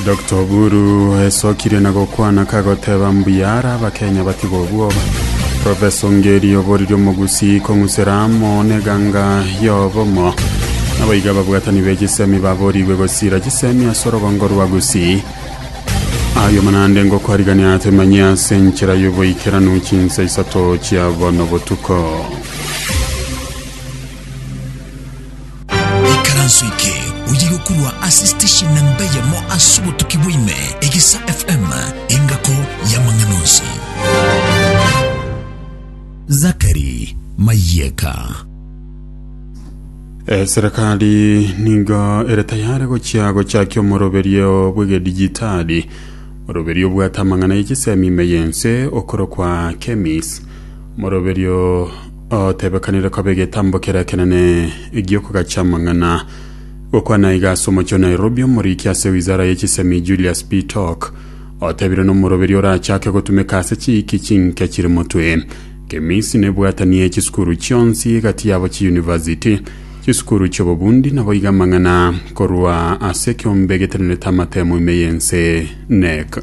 Dr. Oburu esokirie na gokwana kagoteba mbuya ara abakenya batigwe obwoba. Professor Ngeri oboriri omogusii kong'usera amo n'eganga y'obomo. Naboigo ababwatani be chisemi baborigwe gosira chisemi ase orogongo rwa Gusii. Ayo manande ngokwarigania temanye ase enchera y'oboikeranu chinsa isato chia bono botuko. Ikaranso eke oye gokorwa ase station namba eyemo ase obotuki bwa ime, Egesa FM, engako y'amang'ana onsi. Zachary Mayeka. Eh, serikali nigo ere tayari gochia gochakia omoroberio bw'egedijitali moroberio obwate amang'ana y'echisemi ime y'ense okorokwa kemis moroberio Otebekanire koba egetambo kere ekenene egi'okogacha amang'ana. Gokwana iga ase omochie o Nairobi, omoriki ase wizara ye chisemi Julius Bitok otebire nomoroberi orachake gotumeka ase chiiki chinke chire motwe. Kemisi nebwatanie chisukuru chionsi egati yabo chiuniversity, chisukuru chiobobundi naboiga amang'ana korwa ase ekeombe getenenete amatemo ime y'ense, NEC.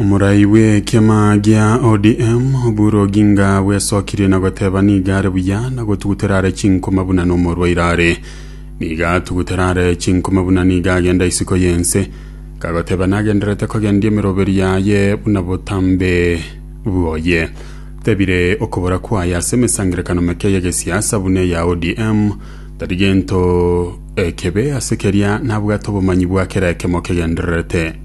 Omorai bw'ekiama gia ODM Oburu Oginga bwesokirie na goteba nigo are buya na gotugutera are chinkuma buna nomorwaire are. Nigo atugutera are chinkuma buna nigo agenda isiko y'ense. Kagoteba nagendererete kogendia emeroberi yaye buna botambe bwoye. Tebire okobora kwaye ase emesangerekano meke y'egesiasa buna eya ODM tari gento ekebe ase keria nabwate obomanyi bwa kera ekemo kegendererete.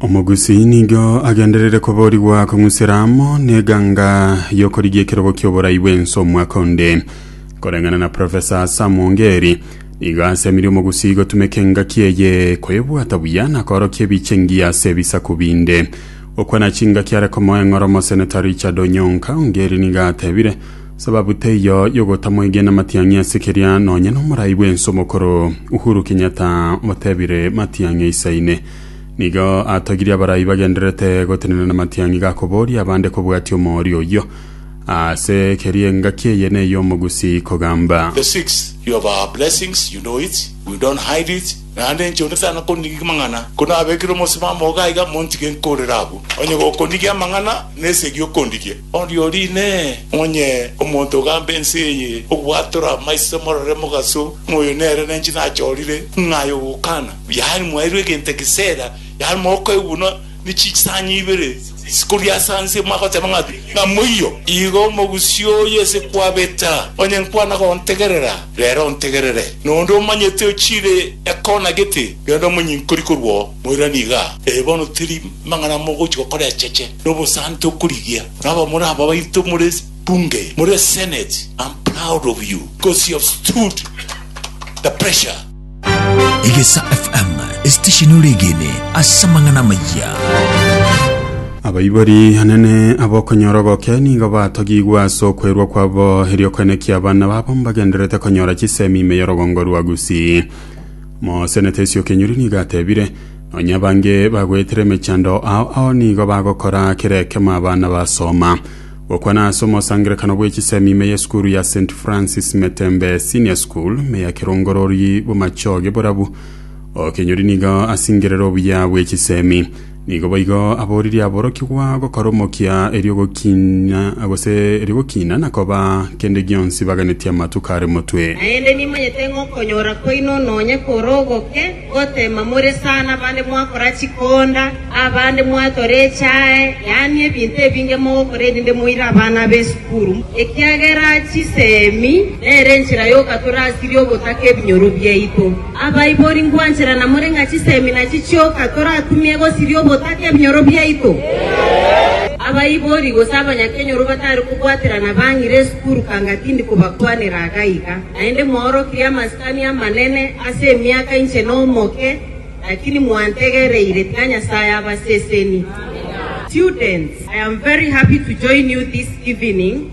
Omogusii nigo agenderere koborigwa kong'usera amo n'eganga y'okorigia ekerogo ki'oborai bw'ense omwaka onde. Koreng'ana na Profesa Sam Ongeri, nigo asemirie omogusii gotumeka engaki eye koyebwata buya na koorokia ebiche engiya ase ebisaku binde. Okwana chingaki are komoa eng'oro Omoseneta Richard Onyonka, Ongeri nigo atebire sababu teiyo y'ogotamwegena Matiang'i ase keria nonye n'omorai bw'ense omokoro Uhuru Kenyatta otebire Matiang'i aisaine Nigo atogirie abarai bagendererete gotenena namatiang'i gakoboria abande kobwatia omoorio oyio. Ase keria engaki eye ney'omogusi kogamba. The six, you have our blessings, you know it, we don't hide it, naende inche onde tana konigigia mang'ana, kono abekire omosibamo oga iga montige nkorere abwo, onye gokonigia amang'ana nesegi okondigie. Oriori inee! Onye omonto ogamba ense eye ogwatora amaiso morore mogaso, ng'a oyo nere nenche nachorire, ng'a aye ogokana? Yaani mwairwe egento egesera, yaani mokoigwa buna ne chisanya ibere chikoria ase anse mwagoteba ng'a ng'a moiyo. Igo omogusii oye ase kwabeta, onye nkwana gontegerera, rero ontegerere, na onde omanyete ochire ekona gete, rende omonyinkori korwa oo. Moirane iga, ee, bono tiri mang'ana mogochia gokora echeche, na obosanti okorigia, na abamura aba baito more bunge, more senate, am proud of you because you have stood the pressure. Egesa FM, esitesheni oregene ase amang'ana amayia. Abaibori anene abokonyora oboke nigo batogigwe ase okwerwa kwabo erio kwenekia abana babo mbagendererete konyora chisemi ime y'orogongo rwa Gusii. Mosenete Isiokenyori nigo atebire, Nonya abange bagoetera emechando ao ao nigo bagokora kera ekemo abana basoma. Gokwana ase omosangererekano bw'echisemi ime y'esukuru ya St Francis Metembe Senior School ime ya Kerongorori bomachoge borabu, Okenyori nigo asingerere obuya bw'echisemi. Nigo boigo aboririe aborokigwa gokora omokia erio gokiina gose erio gokiina na koba kende gionsi baganetie amatuko are motwe. Naende nimanyete ng'a okonyora kwaino nonye kore ogoke, goteema more sana abande mwakora chikonda, abande mwatora echae, yaani ebinto ebinge mogokora erinde moire abana b'esukuru, ekiagera chisemi nere enchera y'okatora asiria ogotaka ebinyoro biaito. Abaibori ngwanchera na more ng'a chisemina chichioka torakumie gosiria obotaka ebinyoro biaito. Abaibori gose abanyakenyoro batari kobwaterana bang'ire esukuru kanga tindi kobakwanera iga iga. Naende mwaorokirie amasikani amanene ase emiaka inche nomoke, lakini mwantegereire, tiga Nyasae abaseseni. Students, I am very happy to join you this evening.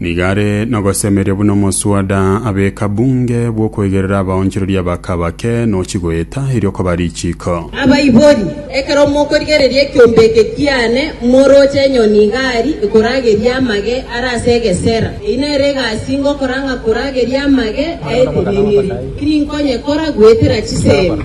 Nigo are nogosemeria buna omoswada abeka bunge bw'okoigerera abaonchoreria ba kabake nochi goeta erio okoba richiiko. Abaibori, ekero mokorigereria ekiombe eke kiane, moroche enyoni iga aria ekorageria amage are ase egesera. Eyio nere egasi ingokora ng'a korageria amage aetenenire, tininkonye kora goetera chisemi.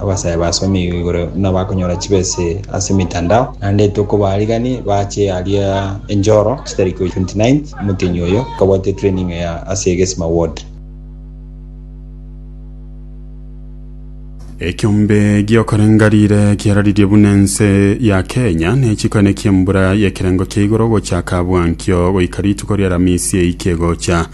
Abasae basomigwe igoro nabakonyora chibese ase emitandao, naende tokobaariganie bache aria Enchoro chitari korwa 29th omotenyi oyo nkabwate training eye ase egesima ward. Ekiombe giokorenga rire kiararirie buna ense ya Kenya ne chikone kiembura yekerengo kia igoro gochaka bwankio goika rituko riaramisi eike gocha.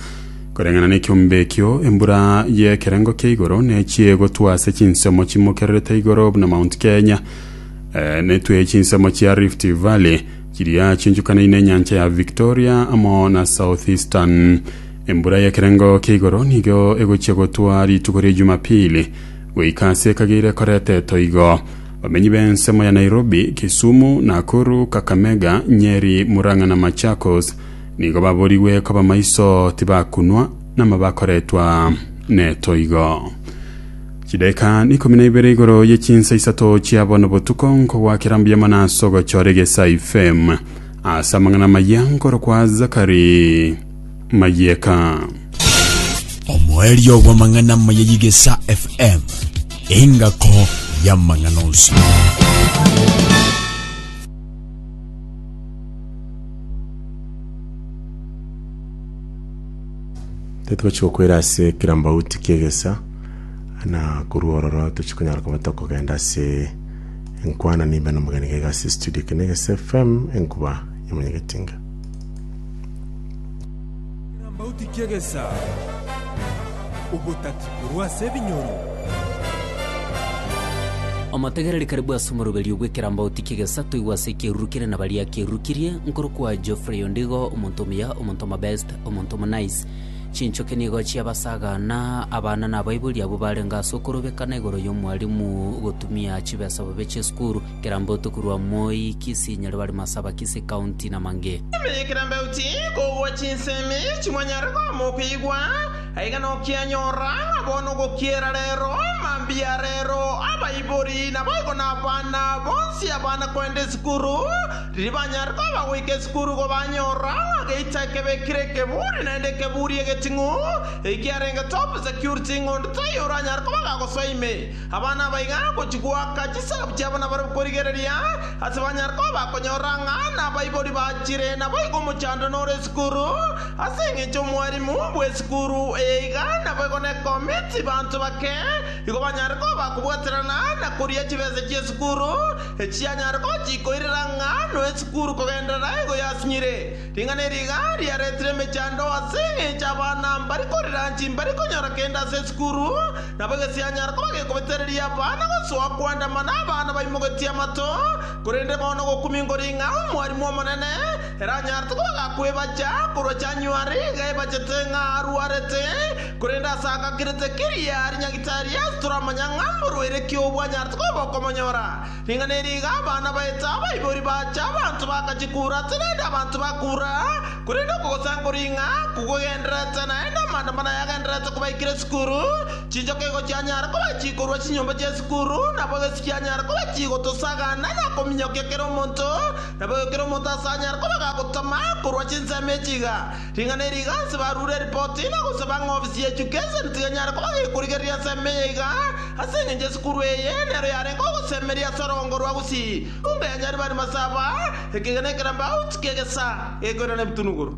Koreng'ana nekiombe ekio, embura y'ekerengo kia igoro nechie egotwa ase chinsemo chimokererete igoro buna Mount Kenya, netwe chinsemo chia Rift Valley chiria chiunchukanaine nenyancha ya Victoria amo na Southeastern. Embura y'ekerengo kia igoro nigo egochia gotwa rituko ria Jumapili goika ase ekageire koretetwa igo. Bamenyi b'ensemo ya Nairobi, Kisumu, Nakuru, Kakamega, Nyeri, Murang'a na Machakos Nigo baborigwe koba maiso tibakunwa, na mo bakoretwa netoigo. Chidaeka ikomi na ibere igoro ye chinsa isato chia bono botuko nkogwakera mbuya mono ase ogochora egesai fem ase amang'ana amaya nkorokwa Zakari Mayeka. Omoerio bw'amang'ana amaya y'Egesa FM, engako y'amang'ana onsi. Titochi gokwera ase kera mbauti kiegesa na korwa ororo tochi konyara koba tokogenda ase enkwana nimbe na omogeni gaiga ase studio kene egesa FM enkuba yamanyegetinga Ekambauti ki'egesaku, Obotati korwa ase ebinyoro. Omotegereri kare bw'ase omoroberio bw'ekeraambauti ki'egesato oigwe ase ekieruru kere na baria ekieruru kirie, nkorokwa Geoffrey Ondigo, omonto omuya, omonto omobest, omonto omonice. Chinchoki nigo chiabasaga, na abana na abaibori abwo barenge ase okorobekana igoro y'omwarimu gotumia chibesa bobe chi'esukuru. Kera mbotu korwa Moi, Kisii, Nyaribari, Masaba, Kisii County na Mange. Ime kera mbeuti kobua chinsemi chimwanyare koama okoigwa, aiga nokianyora ng'a bono ogokiera rero, mambia rero, abaibori naboigo nabana bonsi abana koenda esukuru, riria banyare koba goika esukuru igo banyora ng'a geita ekebe kire ekeburi naende ekeburi egeting'u, ekiarenge top security ng'onto toiyo oranyare koba gagosoa ime. Abana aba iga gochia goaka chisahabu chiabo nabarabwo korigereria ase banyare koba bakonyora ng'a nabaibori bachire. Naboigo omochando nore esukuru, ase engencho omwarimu bw'esukuru eye iga naboigo nekomiti banto bake igo banyare koba bakobwaterana na koria chibesa chi'esukuru, echi yanyare gochia koirera ng'a noe esukuru kogenderera igo yasinyire. Ring'ana eri iga riaretire emechando ase engencho abana mbari korira chimbari konyora kende ase esukuru, nabo egesianyara koba gekobetereria abana gosoa koandamana abana baimogetie amato, korende bono gokumingori ng'a omwarimu omonene eranyarete koba gakwebacha korwa January iga ebachete ng'a arwarete, korende ase agakirete keria ari nyagitari ase toramanya ng'a mborwaire ki obwanyarete koba bokomonyora. Ring'ana eri iga abana baete abaibori bache, abanto bakachia koura ase naende abanto bakoura, korende okogosankora ing'a kogogendererete naende amaandamano aya agendererete kobaikera esukuru, chinchoka igo chianyara kobachia korwa chinyomba chi'esukuru, nabo egesi kianyara kobachia gotosagana na kominyokia kera omonto, nabo kera omonto ase anyare koba gagotama korwa chinsemo echi iga. Ring'ana eri iganse barure eripoti na gosaba ng'a ofisi ya education tiga enyare koba gekorigereria ensemo eye iga ase engencho esukuru eye nero yarenge ogosemeria ase orogongo rwa Gusii buna yanyarire bari masaba ekegena ekerambauti kegesa gekoirana ebitunuguru.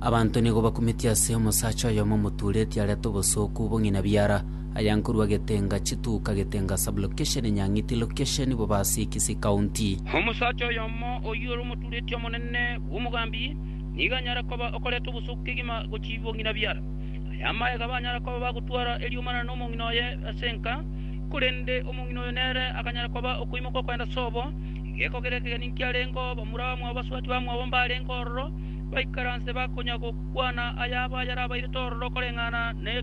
Abanto nigo bakumeti ase omosacha oyomo omotuureti arete obosooku bong'ina biara. Aya nkorwa Getenga chituka Getenga sublocation Nyang'iti location Bobasi Kisii county. Omosacha oyomo oyio ore omotureti omonene bw'omogambi nigo anyare koba okoreta obosooku kegima gochia bong'ina biara. Aya amaega abanyare koba bagotwara eriomana nomong'ina oye ase enka, korende omong'ina oyo nere akanyare koba okoimoka okogenda sobo. Egeeko keria ekegeni nkiarengeo bamura bamwabo basubati bamwabo mbarenge ororo baikaranse bakonya gokwana ayabo ayarabairete ororo koreng'ana ne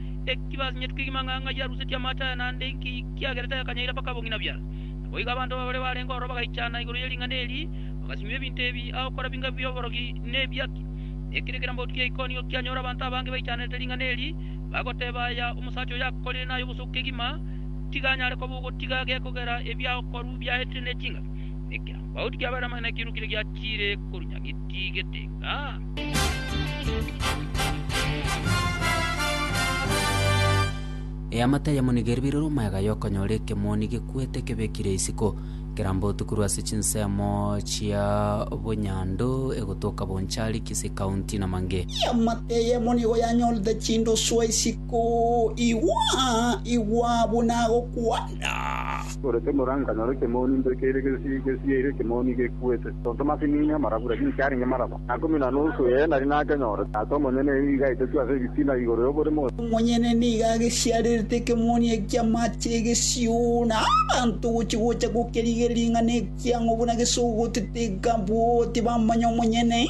Naki basinyetu ki mang'ang'a ya rusetie amaache aya, naende inki kiagera tayakanyaire mpaka bong'ina biara? Naboigo abanto babare barenge ororo bagaichana igoro ye ring'ana eri, bagasinywa ebinto ebi, agokora binga bi'oborogi na ebiaki. Ekero ekerambaoti kia Ikonio kianyora abanto abange baichanerete ring'ana eri, bagoteba aya omosacha oyo akorire naye obosuku kegima, tiga anyare koba ogotiga gekogera ebiagokorwa biaetire ne chingaki. Ekerambaoti kiabaire amang'ana ekiirokire giachiire korunyangetie getenga. Eamate yamonigeri biroro omoyaga yokonyora ekemoni gekwete kebekire isiko, kerambotu korwa ase chinsemo chia obonyandu egotoka Bonchari, Kisii County, na Mange. Eamate y'emonigo yanyorete chindosuo isiko, Igwa, igwa, buna agokwana! Ore tomoranga nyora ekemoni mbe keire gesi gesi yaire ekemoni gekwete. Tonto masinini amarabura ninki arenge maraba na ikomi na nusu ee nari nakenyorete. Ase omonyene eeri iga aitetwe ase ebitina igoro y'oborimo. Omonyene nigo agesiarerete ekemoni ekia amache egesio na abanto gochia gocha gokerigeria ring'ana ekiang'o buna gesogotete ekabwo tibammanya omonyene.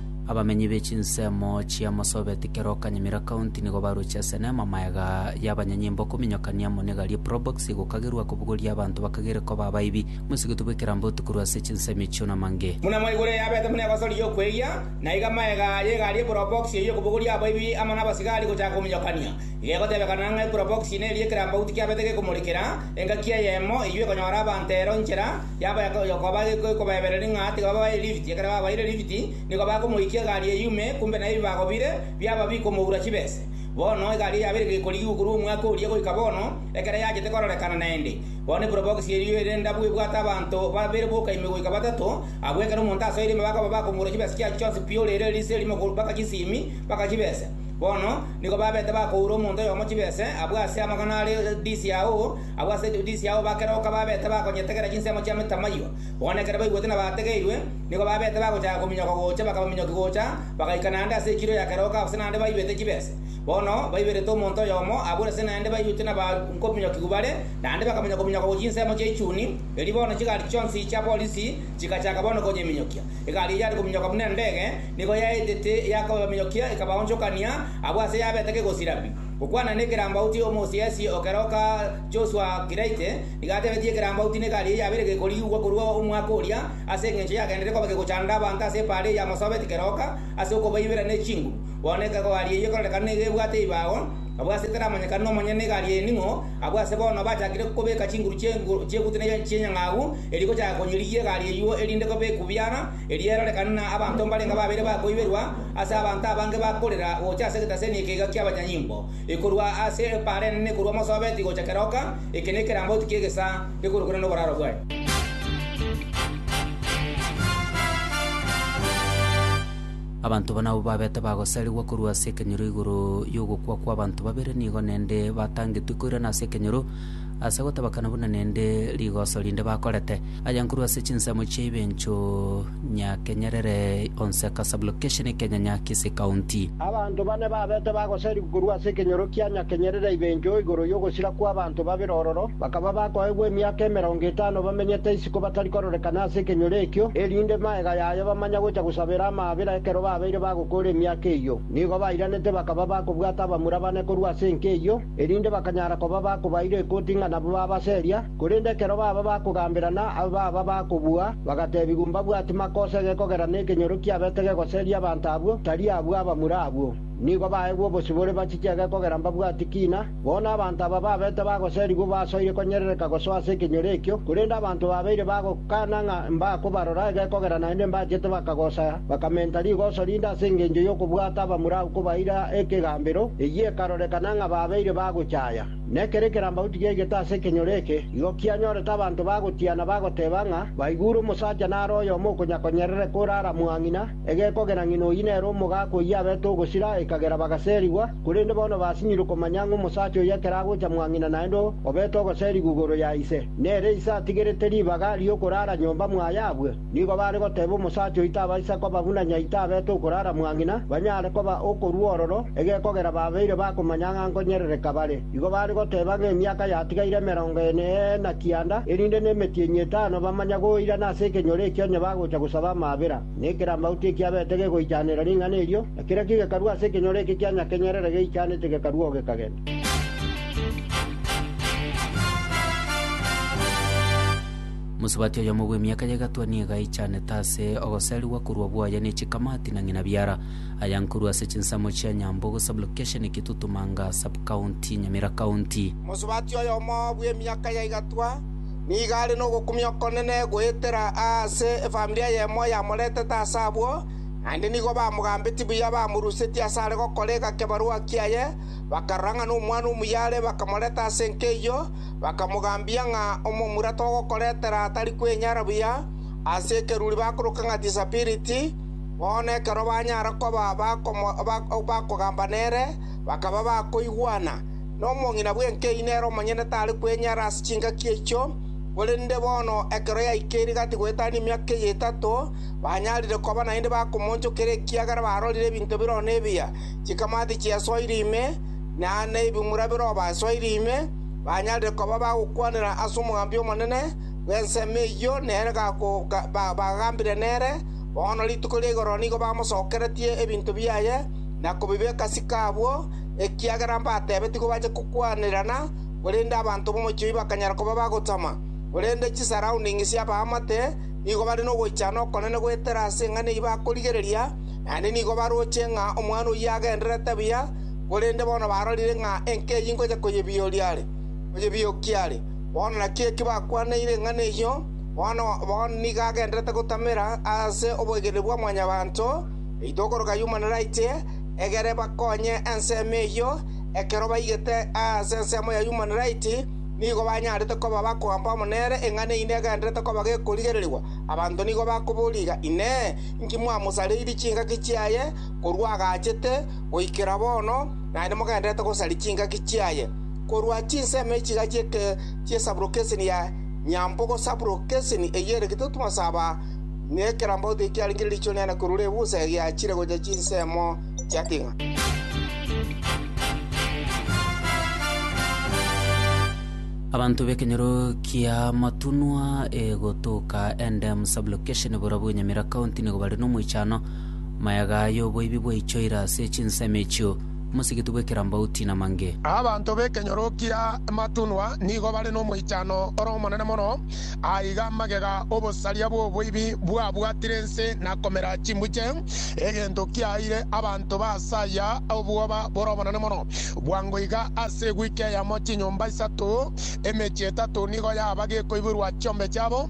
Abamenyi be chinsemo chia Marsabit, Keroka, Nyamira County nigo baroche ase neema magega y'abanyanyimbo kominyokania amo n'egari e Probox egokagerwa kobogoria abanto bakagere koba abaibi. Moisegetwe boikerambe otukorwe ase chinsemo echio namange. Buna mwaigure eyabete buna egosori y'okweyia, na iga magega y'egari e Probox eyio kobogoria abaibi amo n'abasigari gochaka kominyokania. Iga egotebekana ng'a e Probox neria ekerambaguti kiabete gekomorikera engaki eyemo eyio ekonyora abanto ero inchera, Yaba yokoba ekobaebereria ng'a tiga babae lift, ekero babaeire lift, nigo bakomoikia egari eyio ime, kumbe naye ebi bagobire biaba bikomoura chibese. Bono egari eyio yaba ere gekorigigwa korwa omwaka oria goika bono, ekero yachete kororekana naende. Bono eprobox eyio ere ndabu ebwate abanto babere boka ime goika batato, abwo ekero omonto asoire ime bakoba bakomoura chibesa chiaye chionsi pi ore ere erisi erimo korwa mpaka chisimi, mpaka chibese. Bono nigo babete bakoura omonto oyomo chibese abwo ase amagana are disiao, Abwo ase Yudisia ao bakeroka babete bakonyetegera chinsemo chia Tamayo, bono ekero baigwete na baategeirwe, nigo babete bagochaka kominyoka gocha, bakaba minyoki gocha, bagaika naende ase ekiro ya keroka ase naende baibete chibese. Bono baiberete omonto oyomo, abwo ase naende baigwete na bakominyokigwa bare, naende bakamanya kominyoka gochia insemo chia ichuni. Erio bono chigari chionsi chia borisi chigachaka bono konyeminyokia. Egari eyare kominyoka buna endege, nigo yaetete yakobaminyokia, ekabaonchokania, abwo ase yabete kegosira pi. Gokwana nekerambauti Omosiasie o keroka Joshua Kiraite nigo atebetie ekerambauti n'egari eye yabeire gekorigwa korwa omwaka oria ase engencho yagenderete koba gegochanda abanto ase epaara eye yamosobeti keroka ase okobaibera ne chinguru. Bono egari eye ekorerekana nigo ebwate ebibago abwo ase taramanyekana nomonyene n'egari eye ning'o abwo ase bono bachakire kobeka chinguru chi'egutu ne chi'enyang'agu eria igochaka konyirigia egari eyio erinde koba ekubiara Eriero rekanana abanto mbarenge babere bakoiberwa ase abanto abange bakorera gocha ase egetaseni ekeiga ki'abanyanyimbo, ekorwa ase epaara enene korwa Mosobeti gocha Keroka, eke nekerambauti ki'egesa gekorokire noboraro bwaye. Abanto banabo babete bagosarigwa korwa ase ekenyoro igoro y'ogokwa kw'abanto babere nigo nende batangetwe koirana ase ekenyoro ase gotabakana buna nende rigoso rinde bakorete. Aya nkorwa ase chinsemo chia Ibencho Nyakenyerere Onseka Sub-location Ekenyanya Kisii County. Abanto bane babete bagoserigwa korwa ase ekenyoro kia Nyakenyerere Ibencho igoro y'ogosira kw'abanto babere ororo, bakaba bakoegwa emiaka emerongo etano bamenyete isiko batari kororekana ase ekenyoro ekio, erinde magega yaye bamanya gocha gosabera amaabera ekero babeire bagokoora emiaka eyio. Nigo bairanete bakaba bakobwata abamura bane korwa ase enka eyio. erinde bakanyara koba bakobaira ekoti ng'a nabo baba ase eria, korende ekero baba bakogamberana abe baba bakobua, bagateebigwa mbabwati makosa gekogera nekenyoro kiabete gegoseria abanto abwo, tari abwo abamura abwo. Nigo baegwe obosibore bachiche gekogera mbabwati kiina, bono abanto aba babete bagoserigwa basoire konyerereka gosoa ase ekenyoro ekio, korende abanto babeire bagokana ng'a mbakobarora egekogera naende mbachete bakagosa, Bakamenta rigoso rinde ase engencho y'okobwata abamura agwo kobaira ekegambero, eyio ekarorekana ng'a babeire bagochaya. Nekero ekerambagu tigiaigete ase ekenyoro eke, igo kianyorete abanto bagotiana bagoteba ng'a baigure omosacha nare oyomo okonyakonyerereka ore aramwang'ina, egekogera ng'ina oyio nere omogaka oyio abete ogosira, ekagera bagaserigwa, korende bono basinyirwe komanya ng'a omosacha oyio ekero agocha mwang'ina naende obete ogoserigwa igoro ya ise, nere ise atigerete ribaga ri'okorara nyomba mwaye abwe. Nigo baare goteba omosacha oito abaisa koba buna nyaito abete okorara mwa ng'ina, banyare koba okorua ororo, egekogera babeire bakomanya ng'a nkonyerereka bare. Igo baare goteba ng'a emiaka yatigaire emerongo ene na kianda, erinde nemetienyi etano bamanya goirana ase ekenyoro ekio onye bagocha gosaba amaabera. Na ekerambauti ekio abete gegoichanera ring'ana erio, na kiraki gekarua ase ekenyoro eke kia nyakenyerere geichanete gekarua oo gekagenda. Mosubati oyomo bw'emiaka y'egatwa nigo aichanete ase ogoserigwa korwa bwoye ne chikamati na ng'ina biara, aya nkorwa ase chinsemo chia Nyambogo Sub-location Kitutumanga Sub-county Nyamira County. Mosubati oyomo bw'emiaka y'egatwa nigo are nogokumia okonene goetera aase efamiri eyemo yamoretete ase abwo, naende nigo bamogambetie buya bamorusetie ase are gokora egekebarua kiaye, bakarora ng'a nomwana omuya are bakamoreta ase enka eyio, Bakamogambia ng'a omomura togokoretera tari kwenyara buya ase ekeruri bakoroka ng'a Tisabiriti. Bono ekero banyara koba bakogamba nere, bakaba bakoigwana. Na omong'ina bw'enka eyio nere omonyene tare kwenyara ase chingaki echio, korende bono ekero yaikeire gati goetania emiaka eyio etato, banyarire koba naende bakomoonchokera ekiagera barorire ebinto biroro nebiya, chikamati chiasoire ime, na neibimura birobasoire ime, banyarire koba bagokwanera ase omogambi omonene bw'ensemo eyio nere bagambire nere, bono rituko ria igoro nigo bamosokeretie ebinto biaye na kobibeka ase chiko abwo, ekiagera mbatebetigwe bache kokwanererana, korende abanto b'omochie oyio bakanyara koba bagotama. Korende chisaroundings chi'abaamate nigo bare nogoichana okonene goetera ase eng'ana eyio bakorigereria, naende nigo baroche ng'a omwana oyio agendererete buya, korende bono barorire ng'a enka eyio ingocha koyebiokia are. Bono naki eki bakwaniire eng'ana eyio, bono nigo agendererete gotamera ase oboikereri bwa mwanyabanto oito okoroka Human Rights, egere bakonye ensemo eyio. Ekero baigete ase ensemo ya Human Rights, nigo banyarete koba bakogamba amo nere, eng'ana eyio negendererete koba gekorigererigwa. Abanto nigo bakoboria iga, Inee! Inki mwamosareirie chingaki chiaye korwa agachete? Goikera bono naende mogendererete gosaria chingaki chiaye, korwa chinsemo echiga chi'esaburokeseni ya Nyambogo, saburokeseni eyio ere gitutumo ase aba, na ekerambaoto ekio kiarengire riicho riane korwa Rebusa egiachire gochia chinsemo chia Tigna. Abanto b'ekenyoro ki'amatunwa egotoka Endemu saburokeseni borobwo Nyamira County nigo bare nomoichano Mayaga aya oboibi bwaichoire ase chinsemo echio, omosigiti bw'ekerambauti namange. Abanto b'ekenyorokia ematunwa nigo bare nomoichano ore omonene mono. Aiga magega obosaria bw'oboibi bwabwatire ense na komera chimbuche, egento kiaeire abanto ba ase aya obwoba bore obonene mono. Bwango iga ase ewiki eyemo chinyomba isato, emechie etato nigo yaba gekoiborwa chiombe chiabo.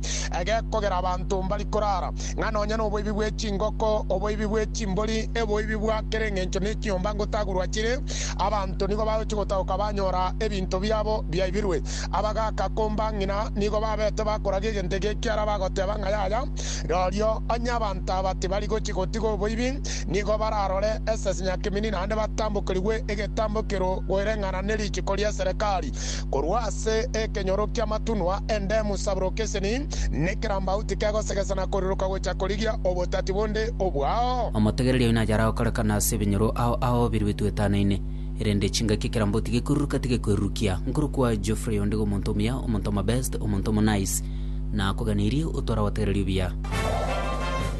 egekogera abanto mbari korara, ng'a nonya noboibi bwe chingoko, oboibi bwe chimbori, eboibi bwa kera engencho ne chinyomba ngotagurwa chire, abanto nigo bagochia gotagoka banyora ebinto biabo biaibirwe. Abagaaka komba ng'ina nigo babete bakoragia egento eke ekiara bagoteba ng'a yaya, rorio onye abanto aba tibari gochia gotiga oboibi, nigo bararore esese nyakemeni naende batambokerigwe egetambokero goireng'ana ne richiko ri'eserekari. Korwa ase ekenyoro ki'amatunwa endemu saburoka eseni, nekerambagu tikegosegesa na koriroka gocha korigia obotati bonde obwao. Omotegereria oino ayare agokorekana ase ebinyoro ao ao birwe etwetanaine, erende chingaki ekerambagu tigekoriroka tigekwerurukia. Nkorokwa Geoffrey onde omonto omuya, omonto omobest, omonto omonice. Nakoganeirie otware abategereria obuya.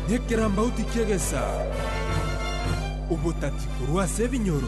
Nekerambagu tikegesa obotati korwa ase ebinyoro.